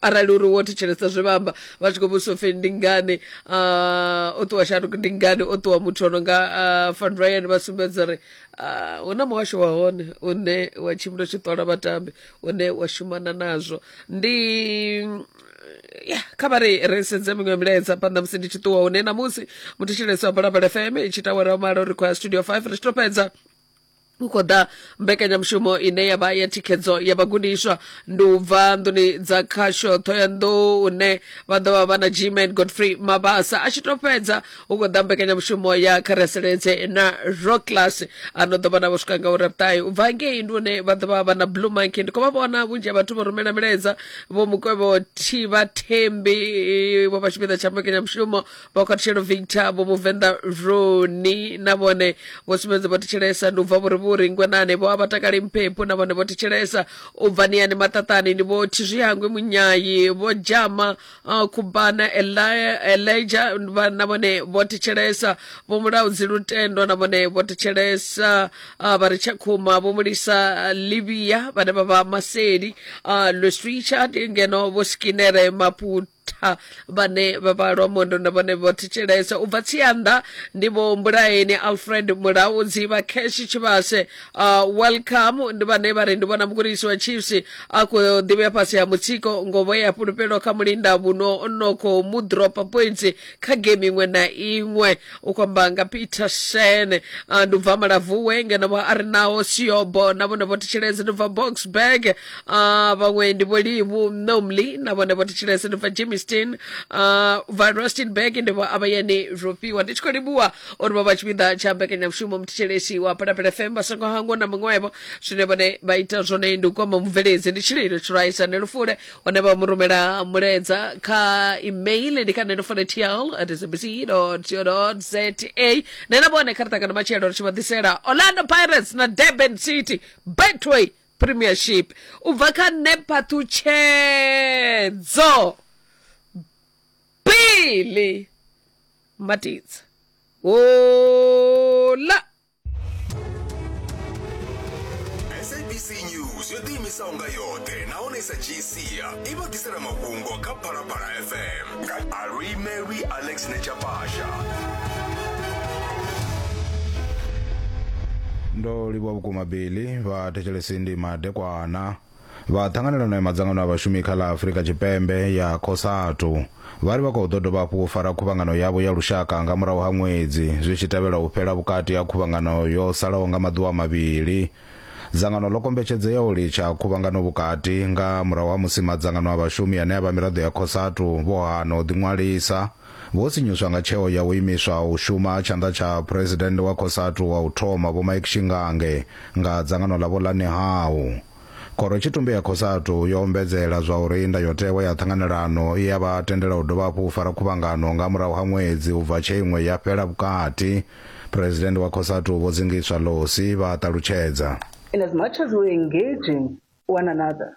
arali uri wo thetshelesa zwe vha amba vha tshi khou vhudzisa upfi ndi ngani ah, o ṱuwa shanduko ndi ngani o ṱuwa muthu ono nga ah, van ryan vha sumbedza uri ah, hu na muhasho wa hone une wa tshimbila tshi ṱola vhatambi une wa shumana nazwo ndi ya kha vha ri ri sedze miṅwe milaedza phanḓa musi ndi tshi ṱuwa hune namusi muthetshelesi wa balabala fm i tshi tawela malo ri khou ya studio five ri tshi to fhedza hu khou ḓa mbekanyamushumo ine ya vha ya thikhedzo ya vhagudiswa ndi u bva nḓuni dza khasho thohoyanḓou une vha ḓo vha vha na gman godfrey mabasa a tshi to fhedza hu khou ḓa mbekanyamushumo ya khareseledze na rock class a no ḓo vha na vho swika nga uri vhuṱahe u bva ngei ndi une vha ḓo vha vha na blue monkey ndi khou vha vhona vhunzhi ha vhathu vho rumela milaedza vho mukwevho thivha thembi vho vha tshipiḓa tsha mbekanyamushumo vha khathutshelo victor vho vhuvenḓa roni na vhone vho sumbedza vho thetshelesa ndi u bva vhuri vhuri ngwenane vho a vha takali mphephu na vhone vho thetshelesa u bva niyani maṱaṱani ndi vho thizwihangwe munyayi vho dzhama uh, khubana Eli- elija vha- na vhone vho thetshelesa vho mulaudzi lutendo na vhone vho thetshelesa uh, vha ri tshakhuma vho mulisa livia vhane vha vha maseli uh, lweswicha ngeno vho skinere maputo tha vhane vha vha lwa mondo na vhone vho thetshelesa u bva tsianda ndi vho mbulaeni alfred mulaudzi vha cash tshivhase uh, welcome ndi vhane vha ri ndi vhona mugudisi wa chiefs a khou ḓivhea fhasi ha mutsiko ngovo ya fhulufhelo kha mulinda vhuno no khou mu dropa points kha game iṅwe na iṅwe u kwamba nga peter shen uh, ndi ubva malavuwe ngeno vha a ri naho siobo na vhone vho thetshelese ndi bva boxburg uh, vhaṅwe ndi vholivu nomly na vhone vho thetshelese ndi bva jimiston uh, bva rustenburg ndi vho avhayani rofhiwa ndi tshi khou livhuwa uri vha vha tshipiḓa tsha mbekanyamushumo muthetshelesi wa phalaphala fm vha songo hangwa na muṅwevho zwine vhone vha ita zwone ndi u kwama mubveledzi ndi tshililo tshiraisa ne lufule hone vha mu rumela mulaedza kha email ndi kha neno fonetial at sabc co za ne na vhone kha ri ṱangana matshelo ri tshi vha ḓisela orlando pirates na durban city betway premiership u bva kha nephaṱhutshedzo bili matidza ola sabc news yo ḓiimisaho nga yoṱhe nahone sa gcia i vha ḓisela mafhungo kha phalaphala fm nga alwi mary alex nechapasha ndo livhuwa vhukuma bili vha thetshelesi ndi madekwana vha Ṱhanganelano ya Madzangano a Vhashumi kha ḽa Afrika Tshipembe ya Cosatu vha ri vha khou ḓo dovha hafhu u fara khuvhangano yavho ya lushaka nga murahu ha ṅwedzi zwi tshi tevhela u fhela vhukati ha khuvhangano yo salaho nga maḓuvha mavhili. Dzangano ḽo kombetshedzea u litsha khuvhangano vhukati nga murahu ha musi madzangano a vhashumi ane a vha miraḓo ya Cosatu vho hana u ḓiṅwalisa. Vho sinyuswa nga tsheo ya u imiswa u shuma tshanḓa tsha Phresidennde wa Cosatu wa u thoma Vho Mike Shingange nga dzangano ḽa Vho Lanihau. Khorotshitumbe ya Cosatu yo ombedzela zwa uri ndayotewa ya ṱhanganelano i ya vha tendela u dovha hafhu u fara khuvhangano nga murahu ha ṅwedzi u bva tshe iṅwe ya fhela vhukati, Phresidennde wa Cosatu Vho Dzingiswa Losi vha ṱalutshedza. In as much as we're engaging one another,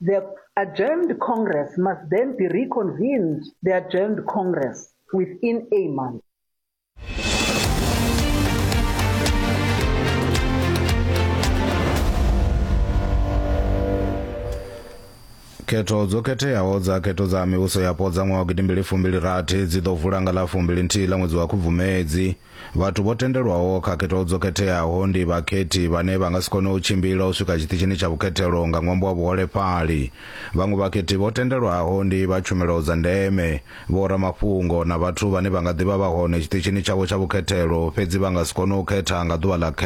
The adjourned Congress must then be reconvened, the adjourned Congress, within a month. khetho dzo khetheaho dza khetho dza mivhuso yapo dza ṅwaha wa gidimbili fumbili rathi dzi ḓo vula nga ḽa fumbili nthihi ḽa ṅwedzi wa khubvumedzi Vhathu vho tendelwaho khakhethwa dzo khetheaho ndi vhakhethi vhane vha nga si kone u tshimbila u swika tshiṱitshini tsha vhukhethelo nga ṅwambo wa vhuholefhali. Vhaṅwe vhakhethi vho tendelwaho ndi vha tshumelo dza ndeme, vhoramafhungo na vhathu vhane vha nga ḓi vha vha hone tshiṱitshini tshavho tsha vhukhethelo fhedzi vha nga si kone u khetha nga ḓuvha ḽa